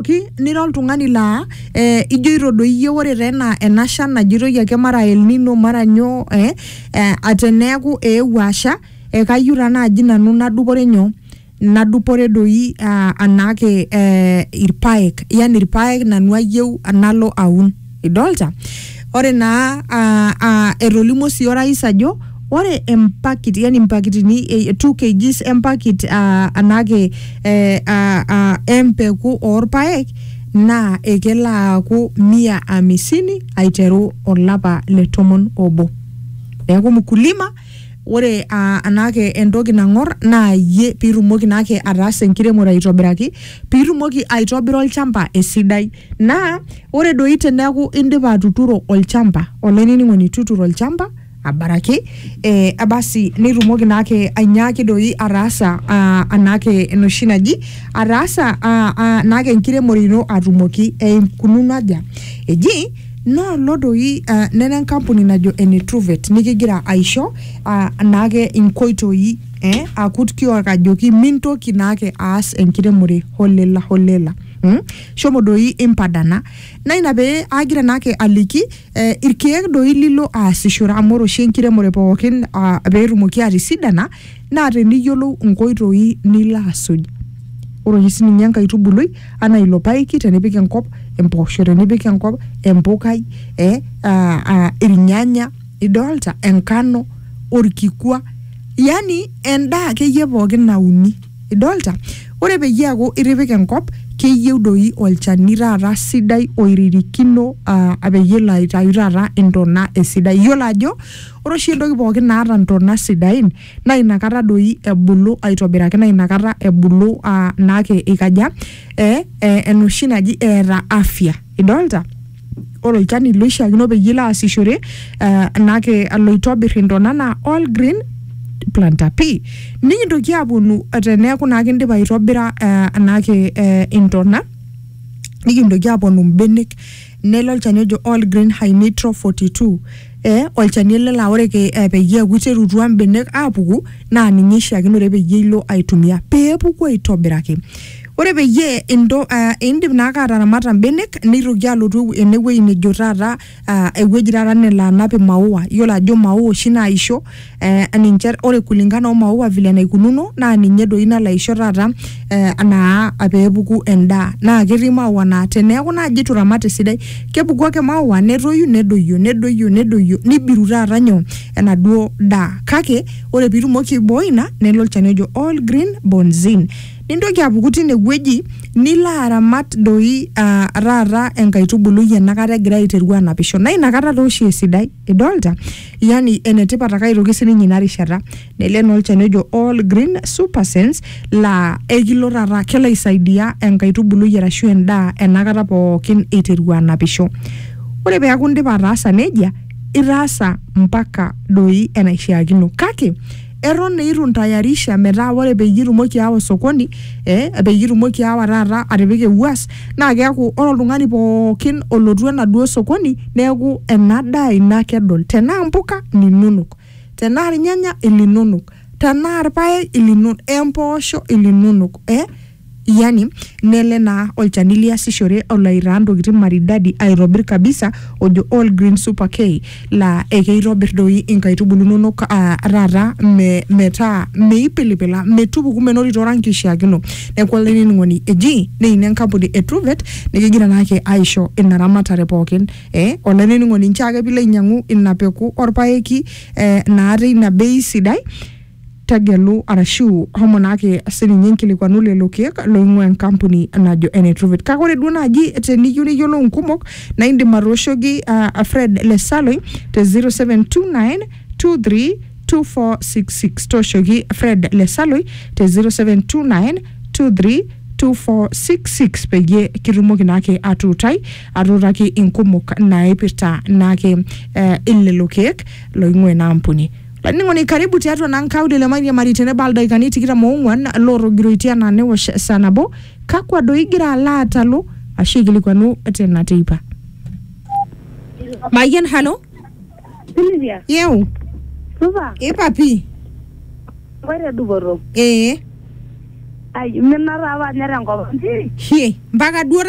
Ki- nira oltung'ani laa eh, ijoito doi iyie ore taa ena ena shan najitoi ake mara El Nino mara nyoo eh, eh, ateneeku eewuo asha eh, kayieu taa naaji nanu nadupore nyoo nadupore doi ah, anaake eh, irpaek yani irpaek nanu ayieu nalo aun. Idolta? Ore naa uh, uh, etolimuo sii orais ajo ore empakit yani mpakitini eh, 2 kgs empakit uh, anake eh, uh, uh, empeku orpaek naa ekelo aaku mia amisini aiteru olapa le tomon obo neeku mkulima ore uh, anake entoki nang'or naa yie piitumoki naake ataasa enkiremore aitobiraki piitumoki aitobira olchamba esidai Naa ore doi teneaku indipa atuturo olchamba, olainining'oni tuturo olchamba abaraki eh, basi nitumoki naake ainyaaki doi ataasa ah, anaake enoshi naji ataasa ah, ah, naake enkiremore ino atumoki eikununo aja eji noolo doi ah, nena enkampuni najo ene Truvet nikigira aisho ah, naake inkoitoi eh, akut kiok ajoki mintoki naake aas enkiremore holela holela mm? Shomo doi impadana. Naa ina pee aagira naake aliki eh, irkeek doi lilo aasishore amu ore oshi enkiremore pookin ah, pee etumoki atisidana naa teniyiolou inkoitoi nilo asuj. Ore oshi sininye enkaitubului anaa ilo paeki tenipik enkop, empoosho tenipik enkop, empukai, eh, ah, ah, irnyanya, idolta, enkano, orkikua, yani endaa akeyie pookin nauni. Idolta? Ore peyie eaku itipika enkop, keyieu doi olchani taata sidai oiririkino uh peyie elo aitayu taata intona esidai iyiolo ajo ore oshi entoki pookin naata intona sidain naa inakata doi ebulu aitobiraki naa inakata ebulu uh naake ikaja eh enoshi naji eeta afya. idolta ore olchani loishiakino peyie ilo aasishore eh, nake aloitobir intona naa all green planter p nikintoki aponu teneeku naa kindipa aitobira eh, nake eh, intona nikintoki aponu mbenek nelo olchani ojo all green high nitro 42 eh, olchani ele laa ore ke- eh, peyie eeku iterutua mbenek apuku naa ninye ishiakinore peyie ilo aitumia peepuku aitobiraki Ore peyie into, uh, indip naake ataramata mbenek nitoki alotu ene wueji nejo taata uh, ewueji taata nelo anap imaua yiolo ajo maua oshi naisho eh, ninche ore kulingana omaua vile enaikununo naa ninye doi nalo aisho taata eh, naa peepuku endaa naa ketii maua naa teneeku naaji itu iramat esidai kepuku ake maua netoyu nedoyio nedoyio nedoyio nibiru taata nyoo enaduo daa kake ore pitumoki aiboi ina nelo olchani ojo all green bonzin Nintoki apuku tine wueji nilo aramat doi uh, taata enkaitubului enakata egira aiteru anapisho naa inakata taa oshi esidai idolta yani enetipat ake aitoki sininye ina rishata nele naa olchani ojo all green super sense laa ekilo taata kelo aisaidia enkaitubului arashu endaa enakata pookin iteru anapisho ore peeku indipa ataasa nejia itaasa mpaka doi enaishiakino kake eton eitu ntayarisha metaa ore peyie itumoki aawa osokoni eh, peyie itumoki aawa taata atipika ewuas naa keeku ore oltung'ani pookin olotu enaduo sokoni neeku ena daa ino ake edol tenaa mpuka ininonok tenaa irnyanya ilinonok tenaa irpaek ilinonok empoosho ilinonok eh, Yani, nele naa olchani liasishore olo aitaa ntokitin maridadi aitobir kabisa ojo All Green Super K laa ekeitobir doi inkaitubulu inonok aa taata me, metaa meipilipila, metupuku menotito oranki oishiakino. Neeku olainining'oni eji neini enkampuni e Truvet nikigira naake aisho ina ramatare pookin. Eh, olainining'oni nchoo ake piilo ainyang'u ina peku orpaeki eh, naa teina bei sidai. Tegelu arashu homo naake sininye nkilikuanu lelo keek loing'ua enkampuni najo ene Truvet. Kake ore duo naaji teniyieu niyiolou nkumok naa indim atooshoki uh, Fred Lesaloi te 0729232466. Tooshoki Fred Lesaloi te 0729232466 peyie kitumoki naake atuutai atuutaki inkumok naipirta naake eh, lelo keek loing'ua ina ampuni. Laining'oni karibu tiatua naa nkaulele mairiamari teneba ildaikani tikitam oong'uan lootogiroitie anaa newosh saa nabo, kakua doi igira alo aatalu ashu aikilikuanu tena teipa? Mayian halo, Silvia, yeu, supa, ipa pii, koito dupoto. ee, Ai, imina taa apa ninye tenkop ang' pii. hie, mpaka duo taata